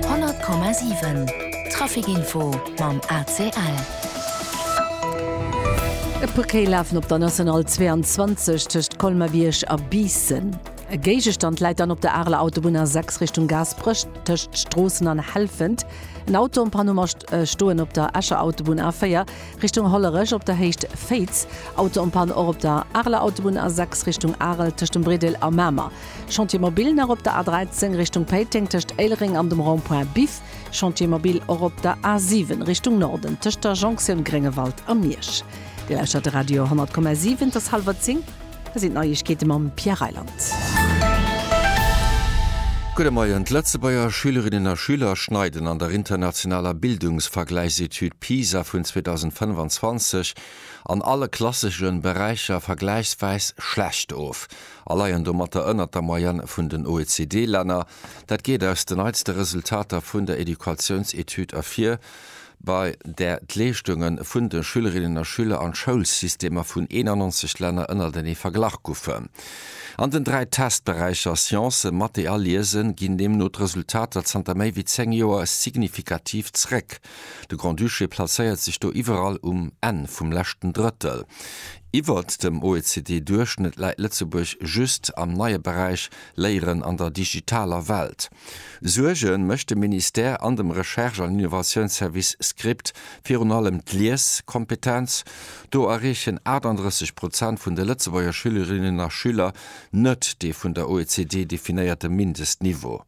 100,7 Traficinfo mam ACL. E puer Kéi lafen op der National 22 tëscht Colmer-Bierg a Biissen. E Géigestand läit dann op der Areler Autobunn A6 Richtung Gaasperech tëscht Stroossen an Helfent. En Auto am Panneau mat Stoen op der Escher Autobunn A4 Richtung Hollerech op der Héicht Féiz. Auto en panne och op der Areler Autobunn A6 Richtung Arel tëscht dem Brédel a Mamer. Chantier Mobil nach op der A13 Richtung Péiteng tëscht Éilereng an dem Rond-point Biff. Chantier Mobil och op der A7 Richtung Norden tëscht der Jonktioun Gréngewald a Miersch. Dir lauschtert de Radio 10,7. Et ass hallwer zéng. Hei sinn d'Neiegkeete mam Pierre Reyland. Gudde Moien. D'Lëtzebuerger Schülerinnen a Schüler schneiden an der internationaler Bildungsvergläichsetüd PISA vun 2025 an alle klassesche Beräicher vergläichswäis schlecht of. a leien domatter ënnert der Moyenne vun den OECD-Länner. Dat geet aus de neitste Resultater vun der Educatiounsetüd ervir, bei där d'Leeschtunge vun de Schülerinnen a Schüler an d'Schoulsystemer vun 91 Länner ënnertenee verglach goufen. An den dräi Testberäicher Science, Mathé a Liese ginn deemno d'Resultater zanter méi wéi zéng Joer signifikativ zréck. De Grand-Duché plazéiert sech do iwwerall um Enn vum leschten Drëttel. Iwwert dem OECD-Duerchschnëtt läit Lëtzebuerg just am neie Beräich Léieren an der digitaler Welt. Suerge mécht dem Ministère an dem Recherche an Innovatiounsservice Script virun allem d'Lieskompetenz. Do erreechen 38 Prozent vun de Lëtzebuerger Schülerinnen a Schüler net dee vun der OECD definéierte Mindestniveau.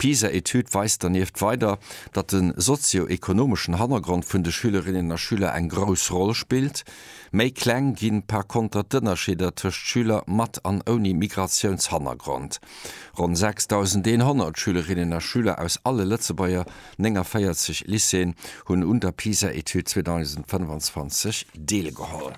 D'PISA-Etüd weist dernieft weider, datt de sozio-ekonomeschen Hannergrond vun de Schülerinnen a Schüler eng grouss Roll spillt. Méi kleng gi par konter d'Ënnerscheeder tëscht Schüler mat an ouni Migratiounshannergrond. Ronn 6.100 Schülerinnen a Schüler aus alle Lëtzebuerger 49 Lycéeën hunn un der PISA-Etüd 2025 deelgeholl.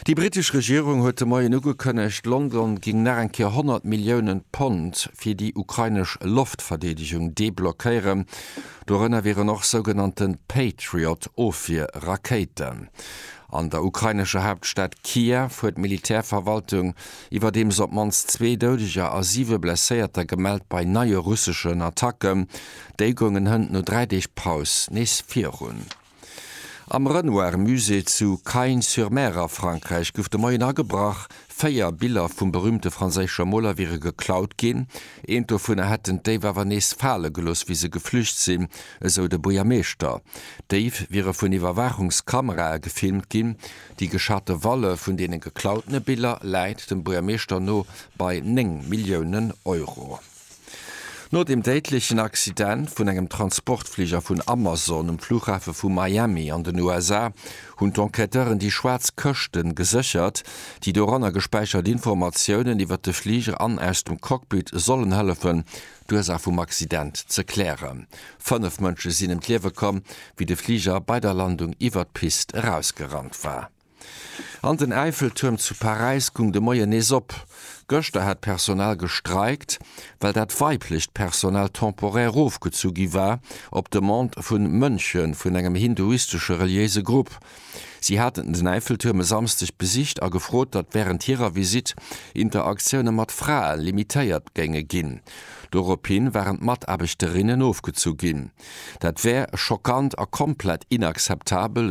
Déi brittesch Regierung huet de Moien ugekënnegt, London géing nach eng Kéier 100 Milliounen Pond fir déi ukrainesch Loftverdeedegung deblockéieren. Dorënner wieren och sougenannte Patriot-Ofwier-Rakéiten. An der ukrainescher Haaptstad Kiew huet d'Militärverwaltung iwwerdeems op d'mannst zwee Doudeger a siwe Blesséierter gemellt bei neie russeschen Attacken. Déi goungen hënt no dräi Deeg Paus nees virun. Am Renoir Musée zu Cagnes-sur-Mer a Frankräich gouf de Moien agebrach. Véier Biller vum berüümte franséische Moler wiere geklaut ginn. Eent dovunner hätten d'Déif awer nees fale gelooss, wéi se geflücht sinn, esou de Buergermeeschter. D'Déif wiere vun Iwwerwaachungskamerae gefilmt ginn. Déi geschate Valle vun deene geklautene Biller läit dem Buergermeeschter no bei 9 Milliounen Euro. No dem déidlechen Accident vun engem Transportfliger vun Amazon um Fluchhafe vu Miami an den USA hunn d'Enquêteuren déi schwaarz Këschte geséchert, déi doranner gespäichert Informatiounen iwwer de Fliger an aus dem Cockpit sollen hëllefen, d'Ursaach vum Accident ze klären. Fënnef Mënsche sinn ëm d'Liewe komm, wéi de Fliger bei der Landung iwwer d'Pist erausgerannt war. An den Äifeltuerm zu Paräis gung de Moien nees op. Gëschter hat d'Personal gestreikt, well dat weiblecht Personal temporaire erofgezu gi war, op Demande vu Mönche vun engem hinduistesche reliéise Grupp. Si haten den Äifeltuerm e Samsdeg besicht a gefrot, datt wärend hirer Visitt Interaktioune mat Frae limitéiert géinge ginn. Doropshi waren d'Mataarbechterinnen ofgezu ginn. Dat wär schockant a komplett inakzeptabel,